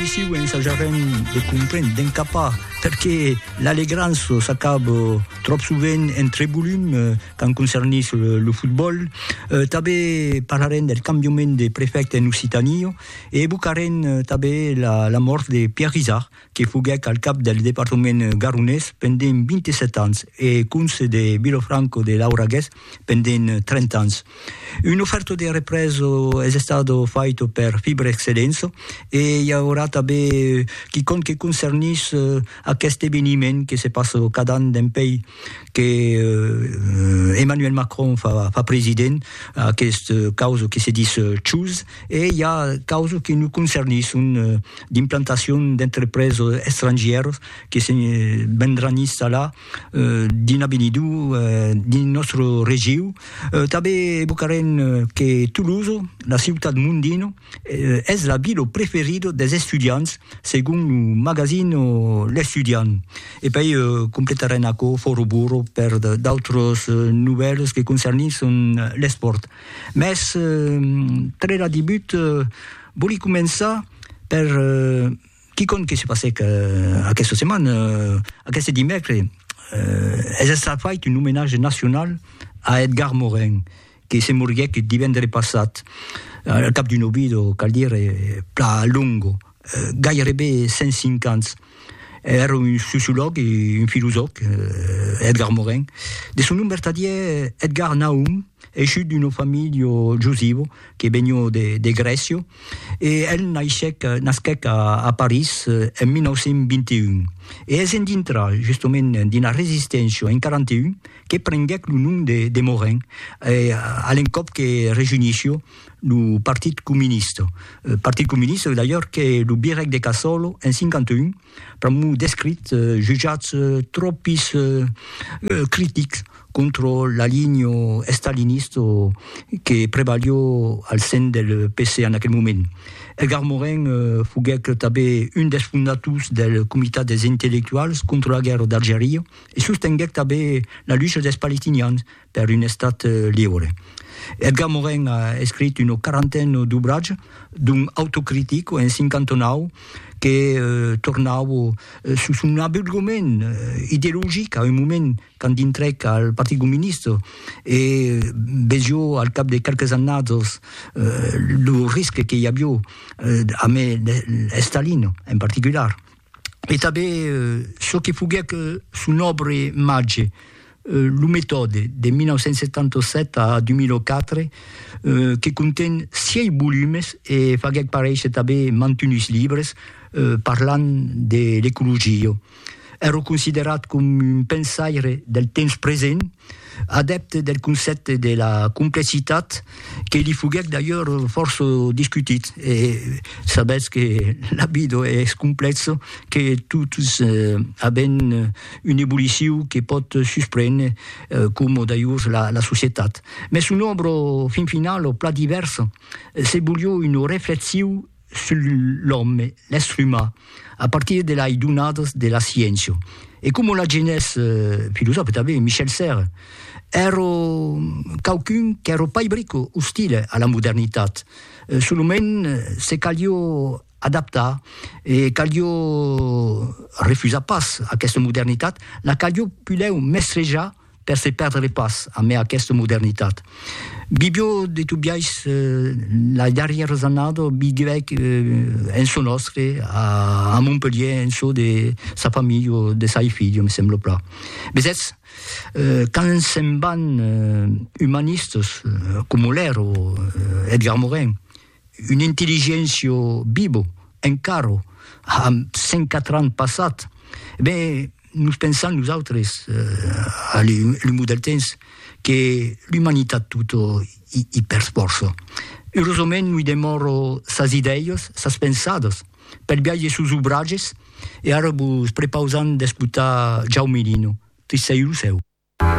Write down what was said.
Issiu ensajarem de comprendre, d'encapar, perqué l'Alegranço s'acaba tròp sovent en trebolum quand concernís lo fotbòl. Tanben parlarem del cambiament de prefècte en Occitània e evocarem tanben la mòrt de Pierre Izard, que foguèc al cap del departament garonés pendent 27 ans e conse de Vilofranco de Lauragués pendent 30 ans. Un oferto de represo es estado faito per Fibrexcelenso e i aurà tanben quicòm que concernís aqueste eveniment que se passa cada an dempèi que Emmanuel Macron fa president, aquest causa que se dis CHOOSE, e i a causa que nos concernisson d'implantacion d'entrepreses estrangièras que se vendràn installar Dins avenido, dins nòstre regiu, tanben evocarem que Toulouse, la ciutat mondino, es la vila preferida des estudiants, segon lo magazine L'Estudiant. E pei completarem aquò fòra burro per d'autras novèlas que concernisson l'espòrt. Mès tre la debut vòli començar per Quicòm que se passèc aquesta setmana, aqueste dimècres, es estat fait un omenatge nacional a Edgar Morin, que se moriguèc divendre passat, al cap d'un obido, cal dire, plan longo, gairebe 105 ans. Èra un sociològ e un filosòf, Edgar Morin. De son nom vertadièr, Edgar Nahum, Eishut d'una familha jusiva que venió de Grècia e el naishèc, nasquèc a París en 1921. E es en dintrar justament d'una resisténcia en 41 que prenguèc lo nom de Morin a l'encòp que rejunishió lo Partit Comunista. Partit Comunista d'ailleurs que lo birèc de Casòlo en 51 pr'amor d'escrits jutjats tròpis critics contra la linha estalinista que prevalió al sen del PC en aquel moment. Edgar Morin foguèc tanben un dels fondators del Comitat dels Intellectuals contra la Guèrra d'Algeria e sostenguèc tanben la lucha dels palestinians per un Estat liure. Edgar Morin a escrit una quarantena d'obratges, dont Autocritic en 59, que tornava sus son abulgament ideologic a un moment quand dintrèc al Partit Comunista e vesió al cap de qualques annats lo risque que i avió amé Estalin en particular. e tanben çò que foguèc son òbra màger, Lo metòde, de 1977 a 2004, que conten sièis volumes e faguèc paréisher tanben mantunhs libres parlant de l'ecologia. Èra considerat coma un pensaire del temps present, Adèpte del concèpte de la complecitat, que li foguèc d'ailleurs fòrça discutit, e sabètz que la vida es complèxa, que totes avèm un evoluciu que pòt susprene, coma d'ailleurs la societat. Mès son òbra, fin finala, plan divèrsa, se volió una reflexiu sul l'òme, l'èstre umà, a partir de lai donadas de la sciéncia. E coma l'agenés filosòfe tanben Michel Serres, èro quauqu'un qu'èro pas brico ostile a la modernitat, solament se calió adaptar e calió refusar pas aquesta modernitat, la calió pulèu mestrejar, Per se perdre pas amé aquesta modernitat. Bibio de Tobiais, la darrièra annada, viguèc en çò nòstre, a Montpelhier, en çò de sa familha, de sai filha, me sembla plan. Vesètz, quand se'n van umanistas, coma l'èra Edgar Morin, Un intelligentio bibo, encaro, amb 104 ans passat. Ben, nos pensam nosautres, a l'umor del temps, que l'umanitat tota i persfòrça. Eurosament noi demòro sas idèias, sas pensadas, pel biages sus obrages e ara vos prepausam d'escotar Jaume Lino, Tristèu lo cèu.